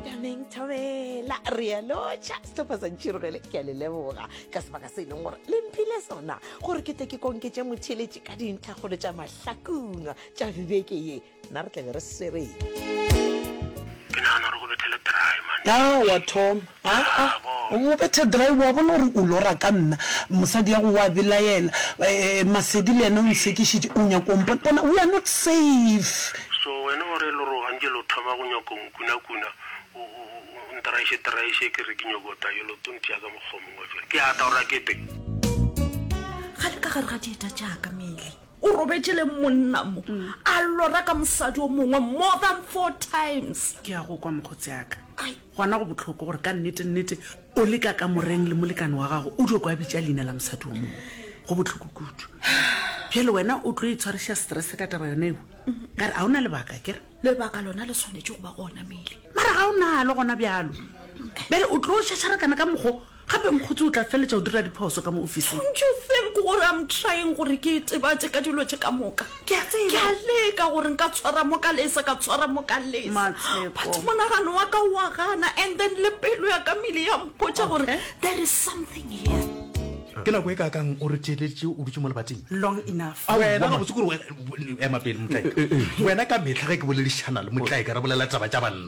tameng thobela re a lotšha setlhopha sa ntšhirogele ke a le leboga ka sebaka se e leng gore le mphile sona gore ke tle ke konketse motheletše ka dintlhagolo tša mahlakungwa tša bibeke ye nna re tlabe re swereng ke nagana gore go bethele dry man a wa thoma aa o bethe dry wa bona gore o lora ka nna mosadi ya go wa belaela eh, masedi le yena o nsekišitše o nyako mpona bona we are not safe So wena o re lo roga nke lo thoma go nyoko nkunakuna, o, o, o, o ntraiše-traiše ke re ke nyoko ta yo lo tontia ka mokgwa o mongwe fela. Ke ata o rakete. Ga le ka gare ga dieta tšaka, Mele. O robetše le monna mo, a lora ka mosadi o mongwe more than four times. Ke a go kwa, mokgotsi aka. Ai. Gona go bohloko gore ka nnete-nnete o le ka kamoreng le molekane wa gago, o dio kwa bitša leina la mosadi o mongwe. Go bohloko kudu. Bjale wena o tlo itshwariša stress ka taba yona ewa. Ka re a o na lebaka kere? Lebaka lona le swanetše go ba gona mele. Mara ga o nalo gona bjalo. Bjale o tlo šašarakana ka mokgo Gape Mokgotsi o tla feletša o dira diphoso ka mo ofising. Don't you think gore I'm trying gore ke itebatše ka dilo tše ka moka? Ke a tseba. Ke a leka gore nka tshwara mo ka lesa, ka tshwara mo ka lesa. Matshepo. But monagano wa ka wa gana and then le pelo ya ka mele ya mpotša gore Okay. there is something here. Ke nako e kakang o re theeleditše o dutše mo lebating? Long enough. Au, Wena wa gabotse kore wena- ema pele motlaeka. Wena ka mehla ge ke boledišana le motlaeka re bolela taba tša banna.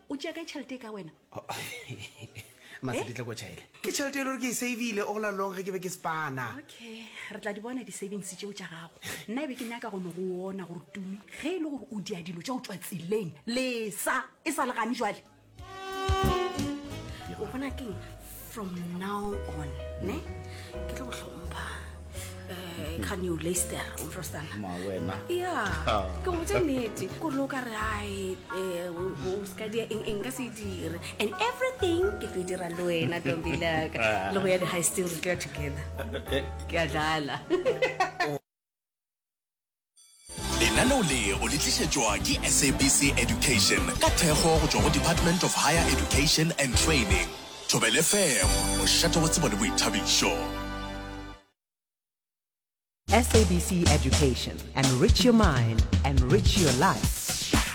o tšea kae tšhelete e ka wena maseditla ko chaile ke tšhelete e le gore ke e savile all along ge ke be ke spana okay re tla di bona di-savings tšeo tša gago nna e be ke nyaka go no go ona gore tumi ge e le gore o dia dilo tša go tswa tseleng lesa e sa legane jale o bona keng from now on ne ke tlo go hlompha eh, can you laster umfrostana ya ke go botsa nnete kore lo ka re ai eh, o seka dia eng eng ka se dire and everything ke tlo e dira le wena tombilaka le go ya di-high sting re tlo ya together eh, eh. ke a dlala lenaneo le o le tlišetšwa ke sabc education ka thekgo go tšwa go department of higher education and training thobele fm mošate wa tsebo le boithabišo SABC Education. Enrich your mind, enrich your life.